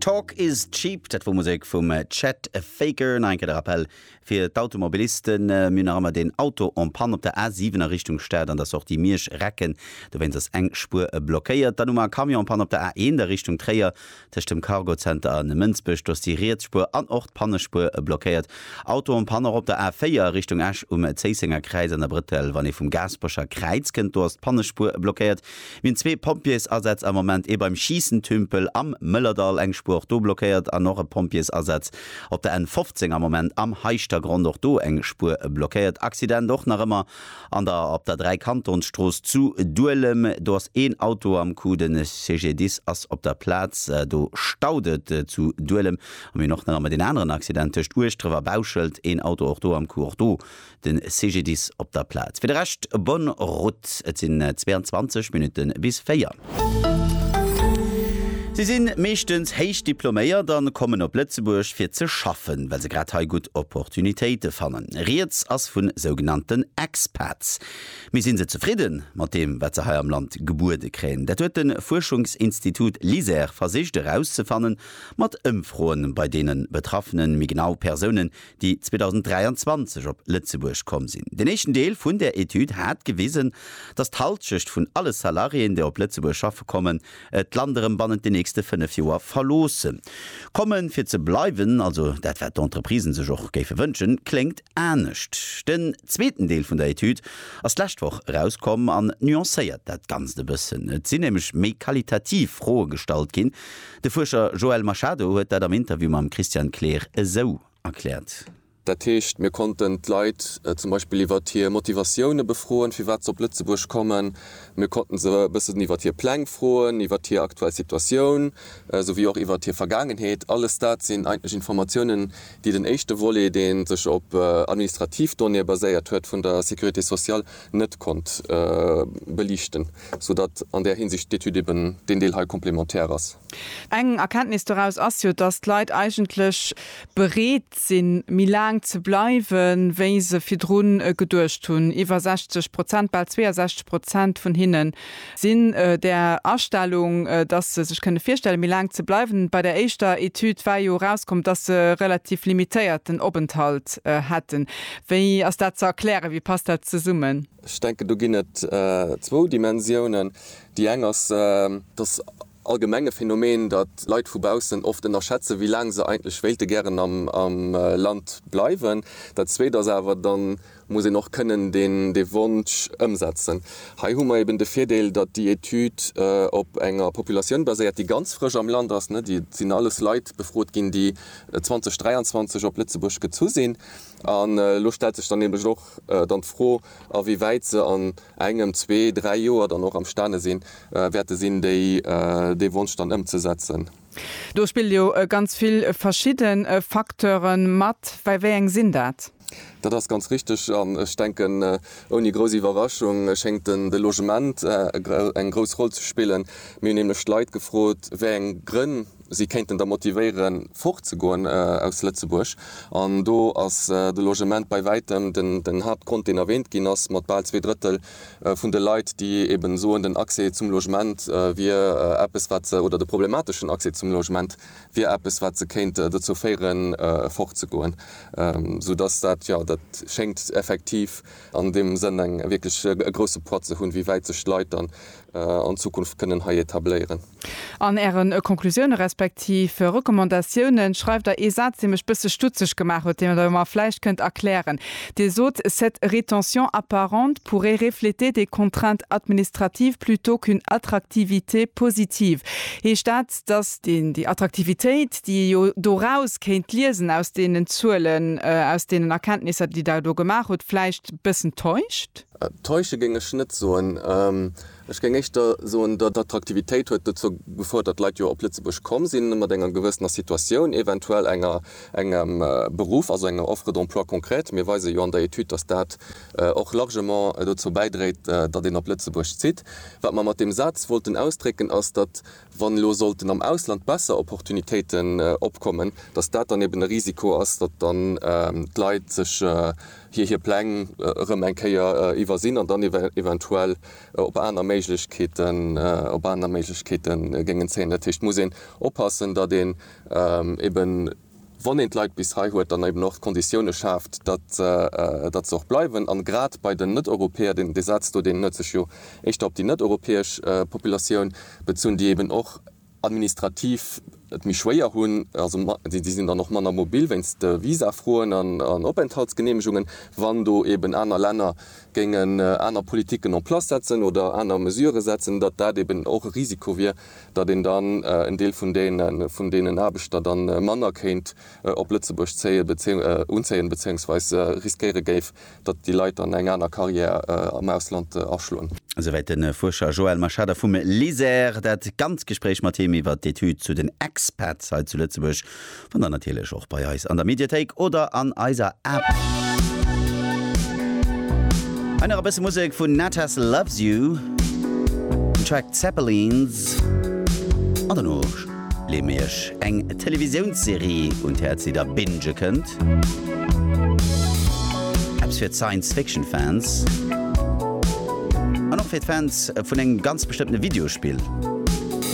Talk is cheap, dat wor Musek vum Chet Faker. Nach eng Kéier de Rappel fir d'Automobilisten, Mir hunn nach ëmmer deen Auto en panne op der A7 a Richtung Stad an der Sortie Miersch, Recken. Dowéinst ass eng Spuer blockéiert. Dann hu mer e Camion en panne op der A1 a Richtung Tréier, tëscht dem Cargo Center a Mënsbech. Do ass déi riets Spuer an och d'Pannespuer blockéiert. Auto en panne och op der A4 a Richtung Esch, um Zéissenger Kräiz an der Brëttel. Wann ee vum Gaasperecher Kräiz kënnt, do ass d'Pannespuer blockéiert. Mir hunn zwee Pompjeesasätz am Moment, ee beim Schiissentümpel am Mëllerdall, eng Spuer och do blockéiert, an och e Pompjeesasaz op der N 15 am Moment am Heischtergronn, och do eng Spuer blockéiert. Accident och nach ëmmer an der op der Dräikantonsstrooss zu Duelem, do ass een Auto am Coup, de CGDIS ass op der Plaz. Do staut et zu Duelem. A mir hunn och nach ëmmer deen aneren Accident tëscht Ueschdref a Bauschelt, een Auto och do am Coup, och do de CGDIS op der Plaz. Fir de Rescht bonne route, et sinn 22 Minutte bis 4. Si si meeschtens héich diploméiert a kommen op Lëtzebuerg fir ze schaffen, well se grad hei gutt Opportunitéite fannen. Rieds ass vu sougenannten Expats. Mee si se zefridde mat deem, wat se hei am Land gebuede kréien? Dat huet de Fuerschungsinstitut LISER versicht erauszefanne mat Ëmfroe bei deene Betraffenen, méi genau Persounen, déi 2023 op Lëtzebuerg komm sinn. Den éischten Deel vun där Etüd hat gewisen, datt d'Halschecht vun alle Salariéen, déi op Lëtzebuerg schaffe kommen, d'Land erëm bannent den nächste fënnef Joer verloosse komme fir ze bleiwen. Also dat, wat d'Entreprisen sech och géife wënschen, kléngt anescht. Den zweeten Deel vun der Etüd ass d'lescht Woch erauskomm an nuancéiert dat Ganzt e bëssen. Et sinn nämlech méi qualitativ Froe gestallt ginn, De Fuerscher Joel Machado huet dat am Interview mam Christian Kleer esou erkläert. Dat heescht, mir konnten d'Leit zum Beispill iwwert hir Motivatioune befroen, firwat se op Lëtzebuerg kommen. Mir konnten se e bëssen iwwert hir Pläng froen, iwwert hir aktuell Situatioun, souwéi och iwwert hir Vergaangenheet. Alles dat sinn eigentlech Informatiounen, déi den éischte Volet, dee sech op administrativ Donnéeë baséiert huet vun der Sécurité sociale, net konnt beliichten, sou datt an där Hinsicht d'Etüd eben deen Deel hei complémentaire ass. Eng Erkenntnis doraus ass jo, datt d'Leit eigentlech bereet sinn, méi laang ze bleiwen, wéi se virdru geduecht hunn. Iwwer 60 Prozent, bal 62 Prozent vun hinnen Sinn där Astellung, dass se sech kënne virstelle méi laang ze bleiwen. Bei der éischter Etüd war jo erauskomm, dass se e relativ limitéierten Openthalt hätten. Wéi ass dat ze erklären? Wéi passt dat zesummen? Ech denken do ginn et zwou Dimensiounen. Déi eng ass, dass allgemenge Phänomen, datt Leit vu baussen oft ënnerschätzen, wéi laang se eigentlech wéilte gären am Land bleiwen. Dat Zweet ass awer, da muss een och kënnen dee Wonsch ëmsetzen. Hei hu mer eben de Virdeel, datt déi Etüd op enger Populatioun baséiert, déi ganz frësch am Land ass. Et sinn alles Leit befrot ginn, déi 2023 op Lëtzebuerg gezu sinn. An elo stellt sech dann nämlech och dann d'Fro, a wéi wäit se an engem, zwee, dräi Joer dann och am Stane sinn, Wäerte sinn, déi dee Wonsch dann ëmzesetzen. Do spille jo ganz vill verschidde Facteure mat. Wéi eng sinn dat? Dat ass ganz richteg. An ech denken, ouni grouss Iwwerraschung schéngt de Logement eng grouss Roll ze spillen. Mir hunn nämlech d'Leit gefrot, wéi eng Grënn si kéinten der motivéieren, fort ze goen aus Lëtzebuerg. An do ass de Logement bei wäitem den Haaptgrond, deen erwähnt ginn ass, mat bal zwee Drëttel. vun de Leit, déi eben soen, den Accès zum Logement wier eppes, wat se, oder de problemateschen Accès zum Logement wier eppes, wat se kéint dozou féieren, fortzegoen. Soudass dat, jo, dat schéngt effektiv an deem Sënn eng wierklech e grousse Poids ze hunn, wéi wäit sech d'Leit dann an Zukunft kënnen hei etabléieren. An Ären Konklusioune respektiv Recommandatiounen schreift Der ee Saz, dee mech bësse stutzeg gemaach huet, deen Der mer vläicht kënnt erklären. Dir sot, Cette rétention apparente pourrait refléter des contraintes administratives plutôt qu'une attractivité positive. Heescht dat, datt déi Attraktivitéit, déi ee jo doraus kéint liesen, aus deenen Zuelen, aus deenen Erkenntnisser, déi Der do gemaach hutt, vläicht bëssen täuscht? Täusche géing ech net soen. Ech géing éischter soen, datt d'Attraktivitéit huet dozou gefouert, datt Leit jo op Lëtzebuerg komm sinn, mat enger gewëssener Situatioun, eventuell enger, engem Beruff, also enger Offre d'emploi concrète. Mir weise jo an der Etüd, datt dat och largement dozou bäidréit, datt een op Lëtzebuerg zitt. Wat mer mat deem Saz wollten ausdrécken, ass, datt, wann elo sollten am Ausland besser Opportunitéiten opkommen, datt dat dann eben e Risiko ass, datt dann d'Leit sech, hir hir Pläng erëm eng Kéier iwwersinn an dann eventuell op aner Méiglechkeeten op aner Méiglechkeete géingen zéien. Dat heescht, et muss een oppassen, datt een eben, wann een d'Leit bis hei huet, dann eben och d'Konditioune schaaft, datt datt se och bleiwen. A grad bei den Net-Europäer, deen dee Saz do, deen huet sech jo éischter op déi net-europäesch Populatioun bezunn, déi eben och, administrativ et méi schwéier hunn, also déi sinn dann och manner mobil wéinst de Visafroen an Openthaltsgeneemegungen, wann do eeben aner Länner géingen aner Politiken en place setzen oder aner Mesurë setzen, datt dat eeben och e Risiko wier, datt een dann en Deel vun deenen Aarbechter da manner kéint op Lëtzebuerg zéien, unzéien, bezéiungsweis riskéiere géif, datt déi Leit dann eng aner Carrière am Ausland aschloen. Souwäit de Fuerscher Joël Machada vum LISER. Dat ganz Gespréich mat him iwwer d'Etüd zu den Expats hei zu Lëtzebuerg fannt Dir natierlech och bei eis an der Mediathéik oder an eiser App. Hei nach e bësse Musek vun Natas Loves You, den Track Zeppelins an dono. Leeë mir iech eng Televisiounsserie un d'Häerz, déi der bingë kënnt. Eppes fir d'Science-Fiction-Fans an och fir d'Fans vun engem ganz bestëmmtene Videospill.